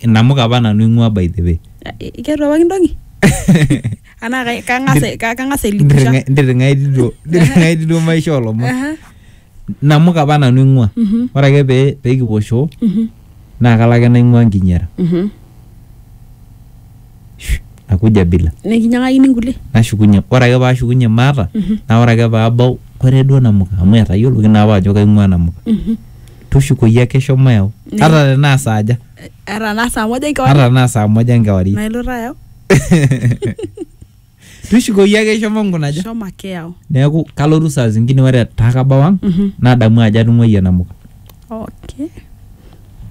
inamuka apa nanu ing'ua by the way ketu apa kintoki anaa kai- kang'as ai- ka- kang'as ailikisha ndiring'ai diduo ndiring'ai diduo maisha olomon Aha, namuka apa nanu ing'ua mhm, ore ake pee pekipuo shoo mhm, naa kalo ake naing'ua nkinyara mhm. nakuja bila nikinyang'akini nkulie nashukunye ore ake paashukunye maata Mhm. naa ore ake paabau kore duo namuka amu etayioloki naa apa ajo kaing'ua namuka Mhm. tushukoyu ake shomo yau Ne- ata tenaa saaja Ata naa saa moja ata enkewarie. tenaa saa moja enkewarie Nailoto ayau. tushukoyu ake shomo nkunaja Shomo ake yau. neeku kalotu saa zingine ore etaa kabau ang Mhm. nadamu ajo atung'uayie namuka Okay.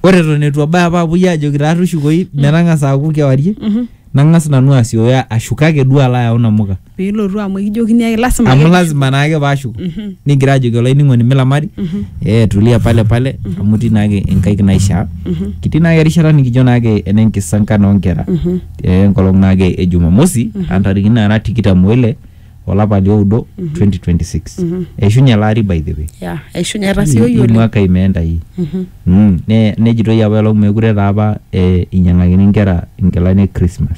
ore eton etu abaya apa apuoi ajoki taa tushukoyu metang'asa aaku kewarie Mhm. nang'as nanu asioyo ashuko ake duo alo ayau namuka piilotu amu ekijokini ake lasima amu ake lazima naake paashuku Mhm. nigira ajoki olainining'oni milamari Mhm. eh tulia pale pale amu itii naake inkaik naishaa Mhm. kitii naake erishata nikijo naake ene nkisankan oonkera Mhm. eh, enkolong naake e jumamosi Mhm. antarikini naara tikitam oile olapa lioudo Mhm. 2026 Mhm. eishunye ele ari by the way ya eishunye Hii- etasioyie hii oleng mwaka imeenda hii Mhm. Mm, ne- nejitoi apa elong mekure taa apa eh, inyang'akini inkera inkilani e Christmas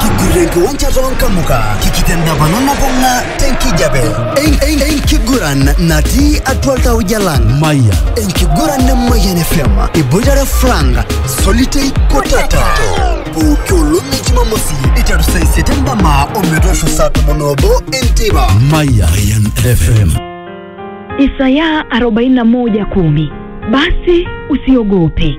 kiguran kiwanja toonkamuka kikitendapana nabung'a tenkijape En- en- enkiguran natii atua iltauja lang maya enkiguran nemayian fm iboitare frank solitei kotata pooki olong'i jumamosi iteru saa isiet endama ometoosho saa tomon oobo enteipa maya mayan fm Isaya 41:10 Basi usiogope,